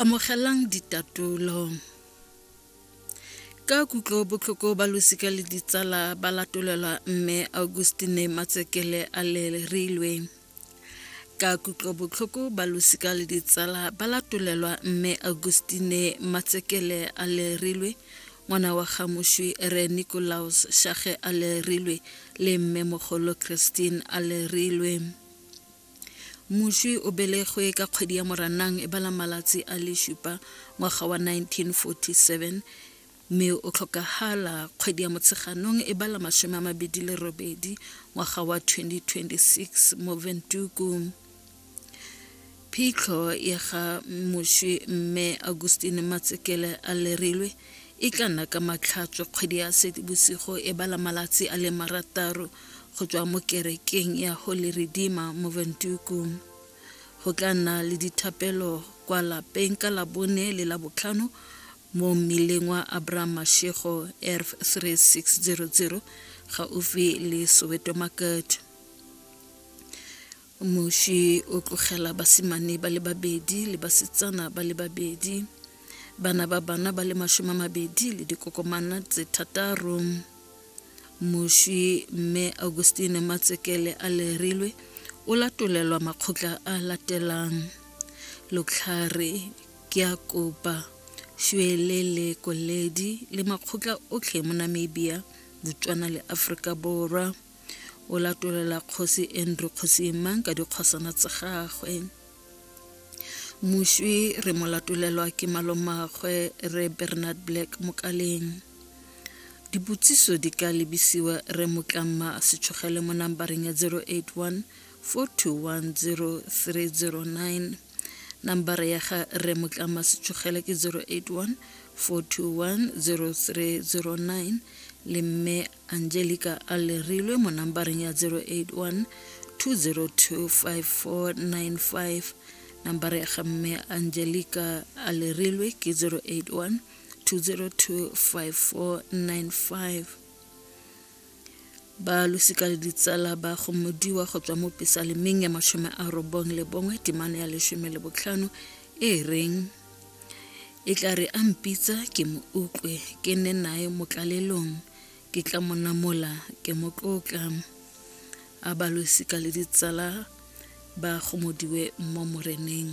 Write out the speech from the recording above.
Amogelang ditatolo. Ka kutlo botlhoko ba losika le ditsala ba latolelwa mme Augustine Matsekele a lerilwe. Ka kutlo botlhoko ba losika le ditsala ba latolelwa mme Augustine Matsekele a lerilwe ngwana wa gamošwi re Nicolaus Shage a lerilwe le mme mogolo Christine a lerilwe. Moswi o belegwe ka kgwedi ya Moranang e bala malatsi a le supa ngwaga wa 1947 mme o tlhokagala kgwedi ya Motsheganong e bala masome a mabedi le robedi ngwaga wa 2026 mo Ventuku. Phitlho ya ga moswi mme Augustine Matsekele a lerilwe e tla nna ka matlhatswe kgwedi ya sedibosigo e bala malatsi a le marataro go tswa mo kerekeng ya holy redeemer mo ventuku go tla nna le dithapelo kwa lapeng ka labone le la botlhano mo mmileng wa abraham mashego erf 3600 gaufi le soweto market moši o tlogela basimane ba le babedi le basetsana ba le babedi bana ba bana ba le mashome a mabedi le dikokomana tse thataro moši mme augustine matsekele a lerilwe o latolelwa makgotla a latelang lotlhare ke a kopa šwele le koledi le makgotla otlhe mo namibia botswana le aforika borwa o latolela kgosi andrew kgosi mang ka dikgosana tsa gagwe moswi re mo latolelwa ke malomagwe re bernard black mokaleng dipotsiso di ka lebisiwa re motlama setshogele mo nambareng ya 081 4210309 nambara ya ga re motlama setshogele ke 081 4210309 le mme angelica a lerilwe mo nambareng ya 081 2025495 nambara ya ga mme angelica a lerilwe ke 081 2025495 ba losika le ditsala ba gomodiwa go tswa mo pesalemeng ya mashome a robong le bongwe temana ya leshome le botlhano e reng e tla re a mpitsa ke mo utlwe ke nne nae mo tlalelong ke tla mo namola ke mo tlotla a balosika le ditsala ba gomodiwe mo moreneng